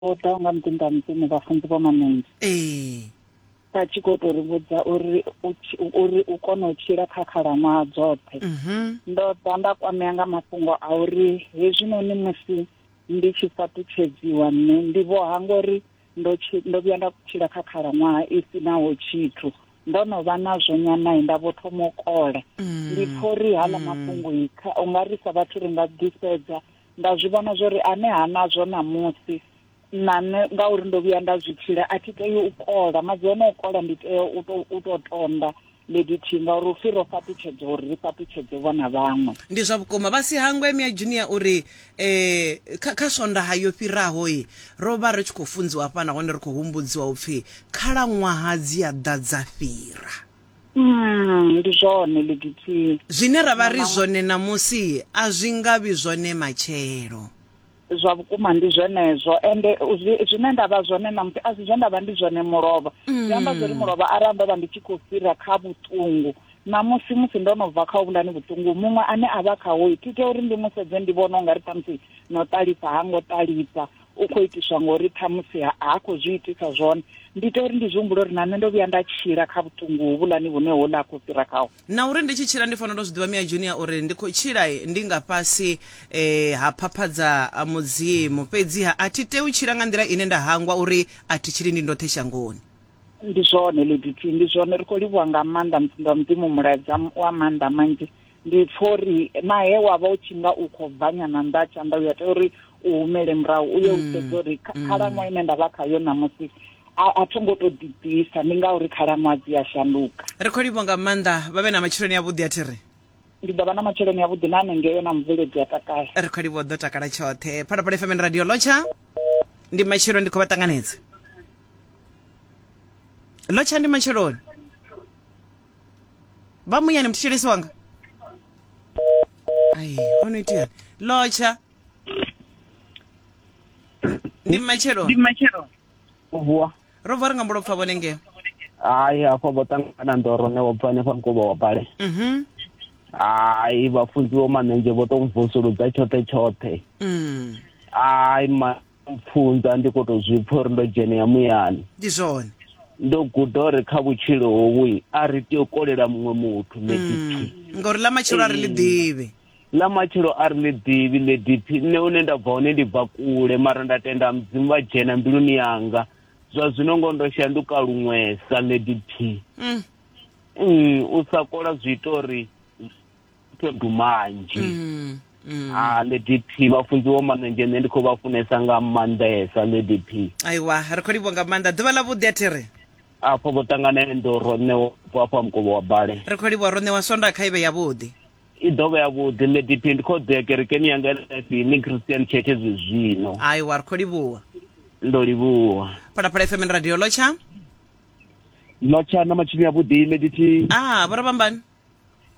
vho ḓaho nga muḓinḓa mudzimu vhafunzi vho manengi ee vha tshi khou tou ri vhudza uri u tshi- uri u kone u tshila kha khalaṅwaha dzoṱhe mhm ndo ḓa nda kwamea nga mafhungo a uri hezwinoni musi ndi tshi fhaṱutshedziwa nṋe ndi vho hangwa uri ndo tshi- ndo vhuya nda tshila kha khalaṅwaha i si naho tshithu ndo no vha nazwo nyanayi nda vho thoma u kola ndi pfha uri hala mafhungo i kha u nga ri sa vhathu ri nga ḓisedza Nda zwi vhona zwo ri ane ha nazwo ṋamusi, na nṋe ngauri ndo vhuya nda zwi tshila, a thi tei u kola. Maḓi o no kola ndi tea u to u to tonda ndi lithihi ngauri hu pfi ro fhaṱutshedzwa uri ri fhaṱutshedze vho na vhaṅwe. Ndi zwa vhukuma. Vha si hangwe Mia Junior u ri, Kha kha Swondaha yo fhiraho, ro vha ri tshi khou funziwa hafha nahone ri khou humbudziwa u pfi khalaṅwaha dzi a ḓa dza fhira. Mm, ndi zwone Leditsie. Zwine ra vha ri zwone ṋamusi a zwi nga vhi zwone matshelo. Zwa vhukuma ndi zwenezwo ende zwine nda vha zwone ṋamusi a si zwe nda vha ndi zwone mulovha. Zwi amba zwori mm. mulovha arali ndo vha ndi tshi khou fhira kha vhuṱungu ṋamusi musi ndo no bva kha uvhulani vhuṱungu muṅwe ane a vha khaho thi tea uri ndi mu sedze ndi vhone u nga ri ṱhamusi no ṱalifha ha ngo ṱalifha u khou itiswa ngori ṱhamusi ha ha khou zwi itisa zwone ndi ita uri ndi zwi humbule uri na nṋe ndo vhuya nda tshila kha vhuṱungu hovhulani vhune ho ḽa khou fhira khawo na uri ndi tshi tshila ndi fanela u zwi ḓivha mia junior uri ndi khou tshila eh, ndi nga fhasi eh, ha phaphadza a mudzimu fhedziha a thi tei u tshila nga nḓila ine nda hangwa uri a thi tshili ndi ndoṱhe shangoni ndi zwone lediti ndi zwone ri khou livhuwa nga maanḓa mufunzi wa mudzimu mulaedza wa maanḓa manzhi ndi pfa uri na he wa vha u tshi nga u khou bva nyana nnḓa ha tshanḓa u ya tea uri u humele murahu u ye u sedza uri kha- khalaṅwaha ine nda vha khayo ṋamusi a a tho ngo tou ḓibvisa ndi ngauri khalaṅwaha dzi a shanduka ri khou livho nga maanḓa vha vhe na matshiloni avhuḓi a thi ri ndi ḓo vha na matshiloni avhuḓi na hanengeo na mubveledzi a takala ri khou livho ḓo takala tshoṱhe phalaphala fm radio lotsha ndi matshelo ndi khou vha ṱanganedza lotsha ndi matsheloni vamunyani mthetshelesi wanga ai ono itiyani lotsha ndi mmatshelo vuwa ro bva ri nga mbo lopfa vhone ngeo hayi hafha vho ṱangana ndoro ne vho bva hanefha mukovha wa bale Mhm. hayi vhafunziwo manenzhe vho to mvusuludza tshoṱhe tshoṱhe Mm. hayi ma mpfunza ndi khou tou zwi pfha uri ndo dzhenea muyani ndi zwone ndo guda uri kha vhutshilo hovhu a ri tea u kolela muṅwe muthu lediphi mm. ngauri ḽa matshelo a ri ḽi ḓivhi ḽa matshelo a ri ḽi ḓivhi lediphi nṋe hune nda bva hone ndi bva kule mara nda tenda mudzimu vha dzhena mbiluni yanga zwa zwino ngo ndo shanduka luṅwesa lediphi mm. mm, u sa kola zwi ita uri to do manzhi mm, mm. ha ah, lady p vhafunziwo manenzhe nṋe ndi khou vha funesa nga maanḓesa lady p aiwa ri khou livho nga maanḓa ḓuvha ḽa vhuḓi a thi ri afho vho ṱanganele ndo ro ṋewa afho a mukovho wa bale ri khou livho ro ṋewa sonda kha ivhe yavhuḓi i ḓo vha yavhuḓi lady p ndi khou ḓea kerekeni yanga lifini christian church zwi zwino aiwa ri khou livhuwa ndo livhuwa phalaphala fm radio lotsha lotsha na matshini yavhuḓi lady p ah vho ravhambani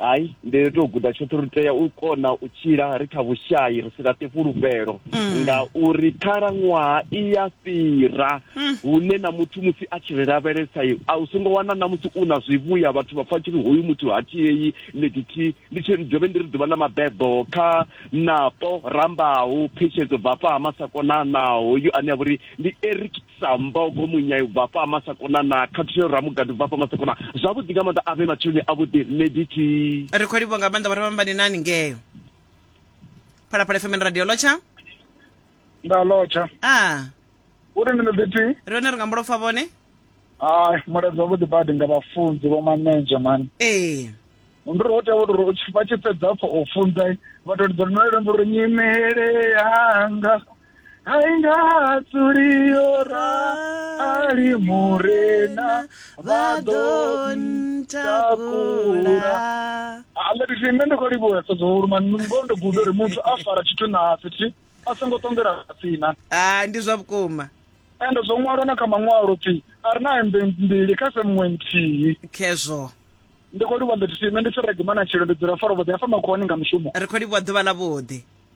hai ndi ri tou guda tshoṱhe ri tea u kona u tshila ri kha vhushayi ri si laṱe fhulufhelo mm. ngauri khalaṅwaha i ya fhira mm. hune na muthu musi a tshi ri lavhelesa a u songo wana na musi u na zwivhuya vhathu vha pfa tshi ri hoyu muthu ha tshieyi ḽekithihi ndi tshi dovhe ndi ri ḓuvha na mabebo kha napo rambaho phetshedzo bvafha ha masakonanaho yo ane a vha uri ndi eric sa mbogo munyai ubva hafha masakona na khathuselo ramugadi ubva hafha masakona zwavhuḓi nga maanḓa avhe matsheloni avhuḓi nṋe diti ri khou livhuwa nga maanḓa vhara vhambani nani ngeyo phalaphala fm na radio lotsha nda lotsha a uri ndi nditi ri hone ri nga mbulopfa vhone hai mulaedza wavhuḓi badi nga vhafunzi vho manenja mani ee ndi ri ho tea uri u tshi- vha tshi fhedza pfo u funza vha to lidza lino lembo uri nyimele yanga aingatsuliora ali murena vha ḓo ntakula aletithi nṋe ndi khou livhuwa sedzahulu mani ngoho ndo guda uri muthu a fara tshithu na fhethu a songo ṱongela tsina ah ndi zwa vhukuma ende zwo ṅwalwa na kha maṅwalo pfi a ri na hembe mbili kha se muṅwe nthihi khezwo ndi khou livhuwa nḓethithi nṋe ndi tshi regimana tshilo ndi dzula fara vhoḓi hafha makhuwani nga mushumo ri khou livhuwa ḓuvha ḽa vhuḓi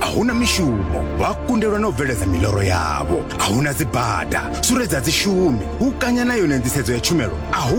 a huna mishumo vha kundelwa na u bveledza miloro yavho a huna dzibada suredzo a dzi shumi u kanya na yone nḓisedzo ya tshumelo a hu